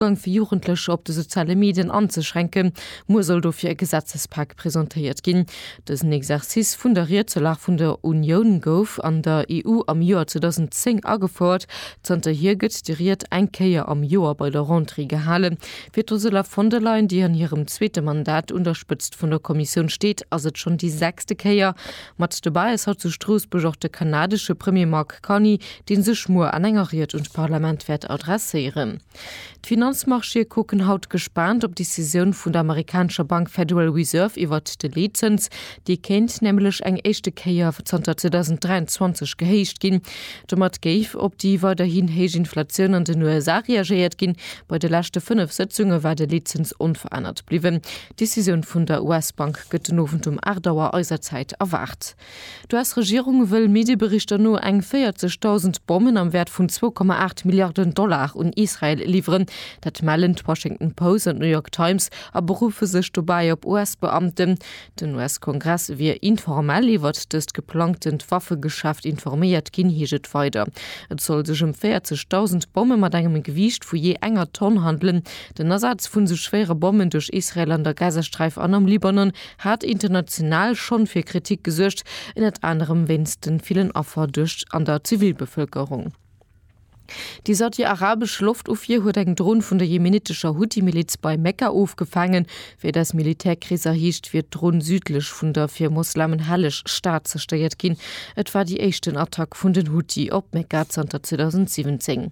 Zougang fir Jugendlecher op de soziale Medien anzeschränken, muer soll dofir e Gesetzespak presentéiert ginn. Dësen Exercice vun der Ried zur Lag vun der Unioun gouf an der EU am Joer 2010 agefouert. Zanterhier gëtt déi Ried eng Kéier am Joer bei der Rentrée gehale. Fir d'Ursula von der Leyen, déi an hirem zweete Mandat un der Spëtzt vun der Kommissioun steet, ass et schonn déi sechste Kéier. Mat dobäi ass haut zu Stroossbuerg och de kanadesche Premier Mark Carney, dee sech muer an enger Ried un d'Parlament wäert adresséieren. D'Finanzmarchéë kucken haut gespaant op d'Decisioun vun der amerikanescher Bank Federal Reserve iwwert de Leetzëns. Dee kéint nämlech eng éischte Kéier zanter 2023 gehéicht ginn. Domat géif op déi weiderhin héich Inflatioun an den USA reagéiert ginn. Bei de leschte fënnef Sëtzunge war de Leetzëns onverännert bliwwen. D'Decisioun vun der US-Bank gëtt den Owend um 8 Auer eiser Zäit erwaart. D'US-Regierung wëll Medieberichter no eng 40.000 Bommen am Wäert vun 2,8 Milliarden Dollar un Israel liwweren. Dat mellen d'Washington Post an d'New York Times a berufe sech dobäi op US-Beamten. Den US-Kongress wier informell iwwert dëst geplangtent Waffegeschäft informéiert ginn, heescht et weider. Et soll sech ëm 40.000 Bomme mat engem Gewiicht vu jee enger Tonn handelen. Den Asaz vun sou schwéiere Bommen duerch Israel an der Gazasträif an am Libanon hat international schonn fir Kritik gesuergt, ënnert anerem wéinst den villen Affer duerch an der Zivilbevëlkerung. Déi saudi-arabesch Loftofwier huet eng Dron vun der jemenitescher Huthi-Miliz bei Mekka ofgefaangen. Wéi des Militärkrees erheescht, wier d'Dron südlech vun der fir Moslemen helleg Stad zerstéiert ginn. Et war déi éischten Attack vun den Huthi op Mekka zanter 2017.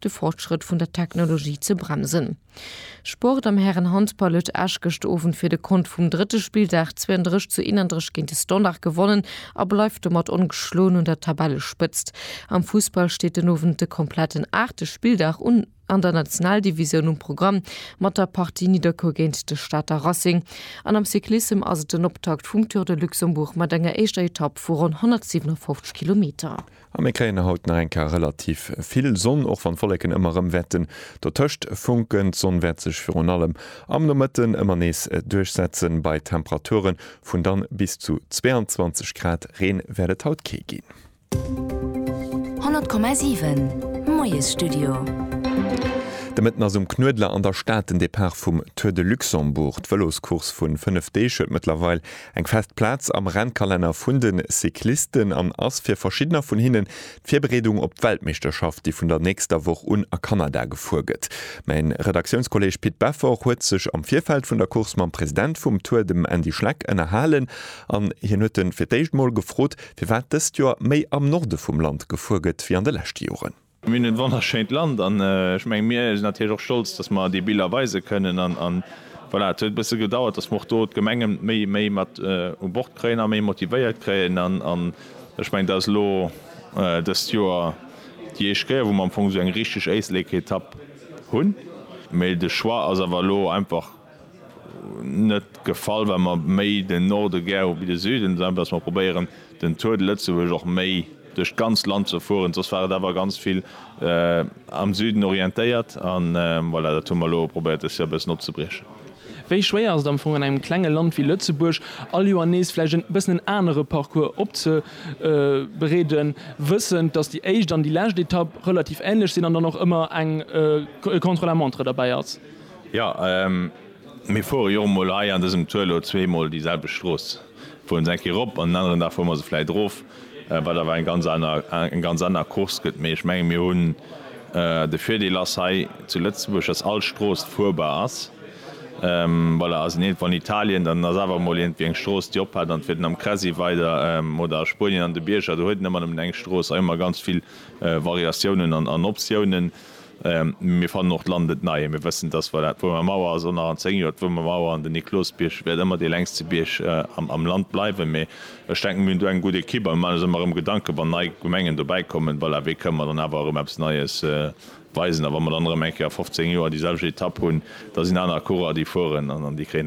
de Fortschrëtt vun der Technologie ze bremsen. Sport am Härenhandball huet Esch gëscht Owend fir de Kont vum drëtte Spilldag 32 zu 31 géint de Standard gewonnen a bleift domat ongeschloen un der Tabellespëtzt. Am Fussball steet den Owend de kompletten aachte Spilldag un an der Nationaldivisioun um Programm mat der Partie Nidderkuer géint de Stater Racing an am Cyclissem ass et den Optakt vum Tour de Luxembourg mat enger éischter Etapp vu ronn 157 Kilometer. A mir kréien haut nach eng Kéier relativ vill Sonn, och wann d'Wolleken ëmmer erëm wäerten dotëscht funken. D'Sonn wäert sech virun allem am Nomëtten ëmmer nees duerchsetzen, bei Temperature vun dann bis zu 22 Grad. Reen wäert et haut kee ginn. 100,7 Moiesstudio. De Mëtten ass um Knuedler an der Stad den Depart vum Tour de Luxembourg. D'Vëloscourse vu 5 Deeg huet mëttlerweil Eng fest Plaz am Rennkalenner vun de Cyclisten an ass fir verschiddener vun hinnen d'Virbereedung op d'Weltmeeschterschaft, déi vun der nächster Woch un a Kanada gefuer gëtt. Mäin Redaktiounskolleeg Pit Beffort huet sech am Virfeld vun der Course mam President vum Tour, dem Andy Schleck, ënnerhalen an hien huet en fir d'éischt mol gefrot, firwat dëst Joer méi am Norde vum Land gefuer gëtt wéi an de leschte Joren. Mir hunn e wonnerschéint Land an ech mengen, mir sinn natierlech och stolz, dass mer déi Biller weise kënnen an voilà. Et huet e bësse gedauert, dass mer och do d'Gemengen méi méi mat u Bord kréien a méi motivéiert kréien an ech mengen, dat ass elo dëst Joer déi éischt Kéier, wou mer am Fong esou eng richteg Éisleketapp hunn, mee de Choix ass awer elo einfach, net gefall well mer méi den Norde gär hu wéi de Süden, esou dass mer probéieren den Tour de Lëtzebuerg och méi duerch d'ganzt Land ze fueren, soss war et awer ganz vill am Süden orientéiert an voilà dat hu mer elo probéiert des Joer e bëssen opzebriechen. Wéi schwéier ass et am Fong an engem klenge Land wéi Lëtzebuerg all Joer nees vläicht e bëssen en anere Parcours opzebereeden, wëssend dass déi éischt an déi lescht Etapp relativ ähnlech sinn an dann och ëmmer eng Contre-la-montre derbäi ass? Jo, mir fuere jo och mol hei an dësem Tour elo zweemol déi selwecht Strooss. Fuere se eng Kéier erop an en aneren Dag fuere mer se vläicht erof, wat awer eng ganz aner, eng ganz aner Course gëtt. Mee ech menge mir hunn, de Virdeel ass hei zu Lëtzebuerg, datt all Strooss fuerbar ass. Voilà, ass een iergendwou an Italien, dann ass awer emol iergendwéi eng Strooss, déi ophält an et fiert een am Cresi weider oder a Spuenien an de Bierger. Do huet een ëmmer nëmmen eng Strooss a jo mar ganz vill Variatiounen an Optiounen. Mir fannen och d'Land net nei. Mir wëssen, dass voilà, d'Wuermer Mauer ass och nach an zéng Joer d'Wuermer Mauer an den Niklosbierg wäert ëmmer dee längste Bierg am Land bleiwen. Mee ech denken, mir hunn do eng gutt Ekipp a mir maachen eis ëmmer erëm Gedanken, wann nei Gemengen dobäi kommen, voilà, wéi kënnen mer dann awer erëm eppes Neies weisen. A wa mer dann erëm eng Kéier a 15 Joer déi selwecht Etapp hunn, da sinn aner Coureurer, déi fueren an déi kréien